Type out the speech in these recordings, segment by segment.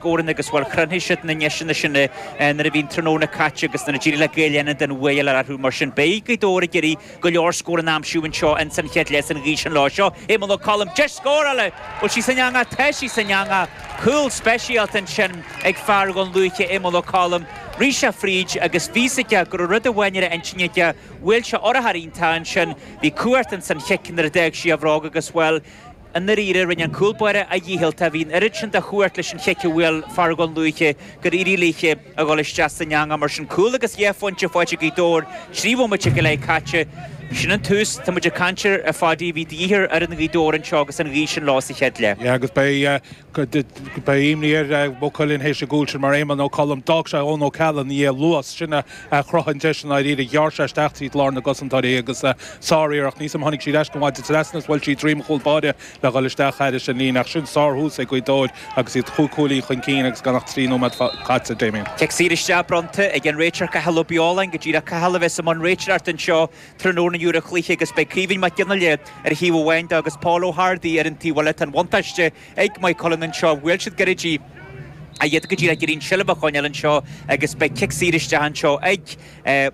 gcomhroinnt agus bhuel chruthóidh siad na deiseanna sin nuair a bhíonn tráthnóna caite agus nuair a d'éirigh le Gaeil Fhánada an t-eagar a athrú mar sin beidh Gaoth Dobhair ag iarraidh go leor scórann a aimsiú anseo ins an chéad leath agus an ghaoth sin leo seo Éamonn Ó Colm deis scórála bhfuil sí san eangach tá sí san eangach cúl speisialta ansin ag fear Dhún Lúiche Éamonn Ó Colm rith sé fríd agus bhí fhios aige go raibh rud amháin ar a intinn aige bhuail sé urchar iontach ansin bhí cumhacht ins an chic nuair a d'fhág sí a bhróg agus bhuel I ndáiríre, rinne an cúlbáire a dhícheall, ach bhí an oiread sin de chumhacht leis an chic a bhuail fear Dhún Lúiche gur éirigh léi a dhul isteach san eangach mar sin. Cúl agus dhá phointe faighte ag Gaoth Dobhair trí bhomaite go leith caite. Sin an tús. Tá muid ag caint air a Phadaí a bhí de dhíth ar fhoireann Ghaoth Dobhair anseo agus an ghaoth sin leo sa chéad leath. Yeah, agus beidh Beidh imní ar Mhaigh Cuilinn théis an chúil sin mar Éamonn Ó Colm. D'fhág sé Eoin O'Callaghan ina dhiaidh. An luas sin a chruthaigh an deis i ndáiríre. Ghearr sé isteach tríd lár na gcosantóirí agus sár-iarracht. Sílim tháinig sí ar ais go maith de trasna is bhuail sí droim an chúl báire le dhul isteach thar an líne. Ach sin sár-thús ag Gaoth Dobhair agus iad chúig chúilín chun cinn agus gan ach trí nóiméad caite, Damien. Cic saor isteach bronnta ag an réiteoir Cathal Ó Beoláin go díreach. Cathal a bheas i mbun réiteoireacht anseo. Tráthnóna inniu ar an gcluiche agus beidh Caoimhín Mac Ginnea ar thaobh amháin de agus Paul Hardy ar an taobh eile. Tá an bhuntáiste ag Maigh Cuilinn anseo, bhuail siad go réidh í iad go dtí seo ag iarraidh an tseilbh a choinneáil anseo agus beidh cic saor isteach anseo ag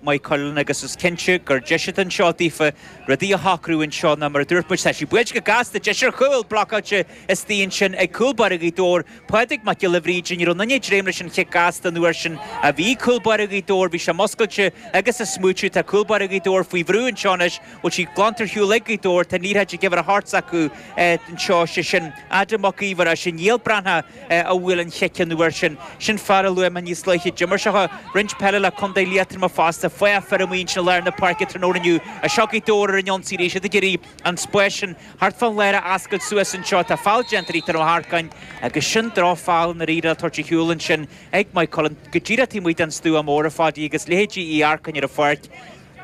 Maigh Cuilinn agus is cinnte gur deis atá anseo daofa rudaí a shocrú anseo nó mar a dúirt muid tá sí buailte go gasta, deis ar chúl, blocáilte istigh ansin ag cúl báire Ghaoth Dobhair. Pádraig Mac Giolla Bhríde, Ní raibh duine ag dréim leis an chic gasta an uair sin ach bhí cúl báire Ghaoth Dobhair. Bhí sé muscailte agus amuigh. Tá cúl báire Ghaoth Dobhair faoi bhrú anseo anois. Bhfuil sí glanta ar shiúl ag Gaoth Dobhair? Tá an éirithe ag uimhir 8 acu anseo. Sé sin Adam Mac Aoidh ar ais chuig Niall Breathnach a bhuail an chic an uair sin. Sin fear a luaigh mé níos luaithe. D'imir sé roinnt peile le Contae Liatroma fosta. Fathach fir ansin i lár na páirce tráthnóna inniu. Ach seo Gaoth Dobhair ar an ionsaí arís, iad ag iarraidh. An spás sin thart fán lár a fhoscailt suas anseo, tá feall déanta ar Ethan Ó hEarcáin agus sin drochfheall i ndáiríre atá tabhartha ar shiúl ansin ag Maigh Cuilinn go díreach taobh amuigh den stua mór a Phadaí agus leithéidí Uí Earcáin ar an pháirc.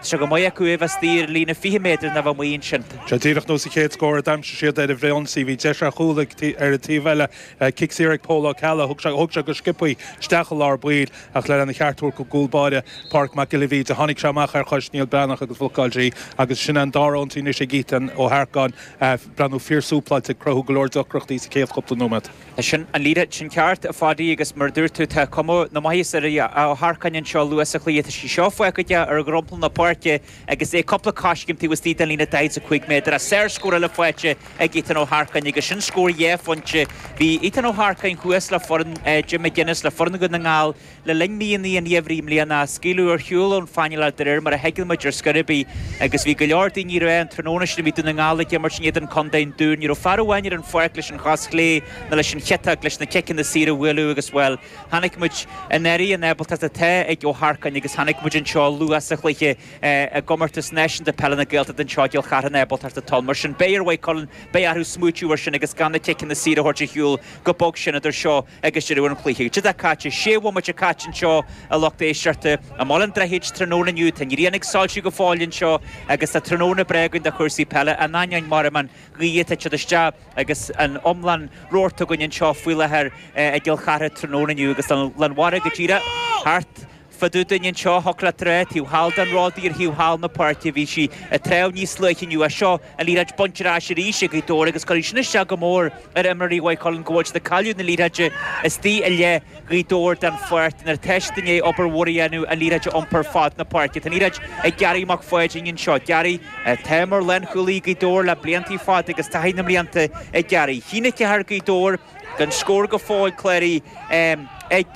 Tá sé go maith acu ó bhuaiteoir, líne fiche méadar nó amuigh ansin. Sé díreach nós an chéad scór a d'aimsigh siad ar an mbinse. Bhí deis ar chúl ar an taobh eile, cic saor ag Pól Ó Ceallaigh, thug sé go sciopaí isteach i lár baill Ach lena cheart a thabhairt don gcúl báire Páraic Mac Giolla Bhríde, tháinig sé amach ar chois Neil Breathnach agus bhlocáil sé í agus sin é an dara ionsaí anois ag Ethan Ó hEarcáin, breathnú fíor-súpláilte ag cruthú go leor deacrachtaí sa chéad chúpla nóiméad. Sin an leaid sin ceart, a Phadaí, agus mar a dúirt tú, tá cuma na maitheasa ar Ó hEarcáin anseo luath sa chluiche. Tá sí seo fágtha aige ar dhromchla na páirce. agus é cúpla coiscéim taobh istigh den líne 45 méadar agus sárscór eile faighte ag Ethan Ó hEarcáin agus sin scór dhá phointe. Bhí Ethan Ó hEarcáin thuas le foireann Jim McGuinness le foireann Dhún na nGall le linn míonna an gheimhridh i mbliana, scaoileadh ar shiúl ón phainéal de réir mar a thuigeann muid ar scor ar bith agus bhí go leor daoine ag rá an tráthnóna sin a bhí Dún na nGall ag imirt in éadan Contae an Dúin. Ní raibh fear amháin ar an pháirc leis an chos chlé nó leis an chiotach, leis na ciceanna saoire a bhualadh agus, bhuel, Chonaic muid i ndáiríre an ábaltacht atá ag Ó hEarcáin agus chonaic muid anseo luath sa chluiche i gComórtas Náisiúnta Peile na Gaeltachta anseo i gCill Chartha an ábaltacht atá ann. Mar sin beidh ar Mhaigh Cuilinn beidh orthu smaoitiú air sin agus gan na ciceanna saoire a thabhairt ar shiúl go bog sin idir seo agus deireadh an chluiche. Cad é atá caite, sé bhomaite caite anseo, a lucht éisteachta. I mBaile an Droichid tráthnóna inniu, tá an ghrian ag soilsiú go fóill anseo agus tá tráthnóna breá againn do chúrsaí peile, in ainneoin, mar a mbean, ghaoth tá an taoide isteach agus an iomlán rabharta againn anseo faoi láthair i gCill Chartha tráthnóna inniu agus an lán mara go díreach thart fá dtaobh dúinn anseo. Hecla Trá, taobh thall den ród ar thaobh thall na páirce. Bhí sí ag trá níos luaithe inniu agus seo an liathróid bainte ar ais arís ag Gaoth Dobhair agus cuirfidh sin isteach go mór ar imreoirí Mhaigh Cuilinn go bhfuil siad ag cailleadh na liathróide istigh i leith Gaoth Dobhair den pháirc nuair atá siad i ndiaidh obair mhór a dhéanamh an liathróid a iompar fad na páirce. Tá an liathróid ag Gearaí Mac Pháidín anseo. Gearaí atá mar lánchúlaí Gaoth Dobhair le blianta fada agus taithí na mblianta ag Gearaí. 1-4 Gaoth Dobhair gan scór go fóill cláraithe ag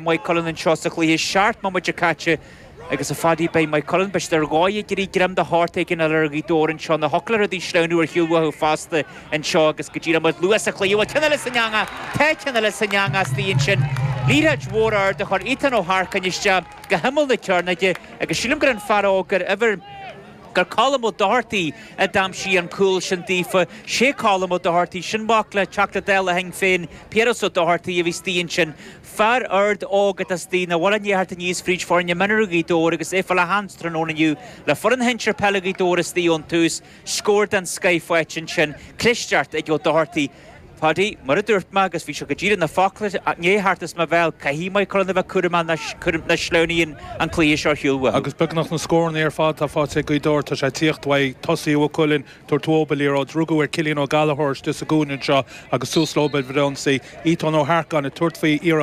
Maigh Cuilinn anseo sa chluiche seacht mbomaite caite. Agus, a Pháidí, beidh Maigh Cuilinn, b'fhéidir, ar dhóigh ag iarraidh greim de shórt éigin a fháil ar Ghaoth Dobhair anseo nó thiocfadh le rudaí sleamhnú ar shiúl uathu fosta anseo agus go díreach muid luath sa chluiche. Bhuel, ceann eile san eangach? Tá, ceann eile san eangach istigh ansin. Liathróid mhór ard a chuir Ethan Ó hEarcáin isteach go himeall na cearnóige agus sílim gur an fear óg ar uimhir gur Colm Ó Dochartaigh a d'aimsigh an cúl sin daofa. Sé Colm Ó Dochartaigh sin, mac le teachta Dála Shinn Féin, Piaras Ó Dochartaigh, a bhí istigh ansin. Fear ard óg atá sa duine a bhfuil i ndiaidh theacht aníos fríd foirne mionúr Ghaoth Dobhair agus é ag fáil a sheans tráthnóna inniu le foireann shinsir peile Ghaoth Dobhair istigh ón tús, scór den scoith faighte ansin, clisteacht ag Ó Dochartaigh. A Pháidí, mar a dúirt mé, agus bhí seo go díreach, na focla i ndiaidh theacht as mo bhéal, caithfidh Maigh Cuilinn a bheith cúramach nach sleamhnaíonn an cluiche seo ar shiúl uathu. Agus beagnach na scórannaí ar fad atá faighte ag Gaoth Dobhair, tá sé ag tíocht uaidh tosaithe Mhaigh Cuilinn ag tabhairt uathu an liathróid, rugadh ar Chillian Ó Gallachóir istigh sa gcúinne anseo agus suas leo ansin, Ethan Ó hEarcáin ag tabhairt faoi iarracht,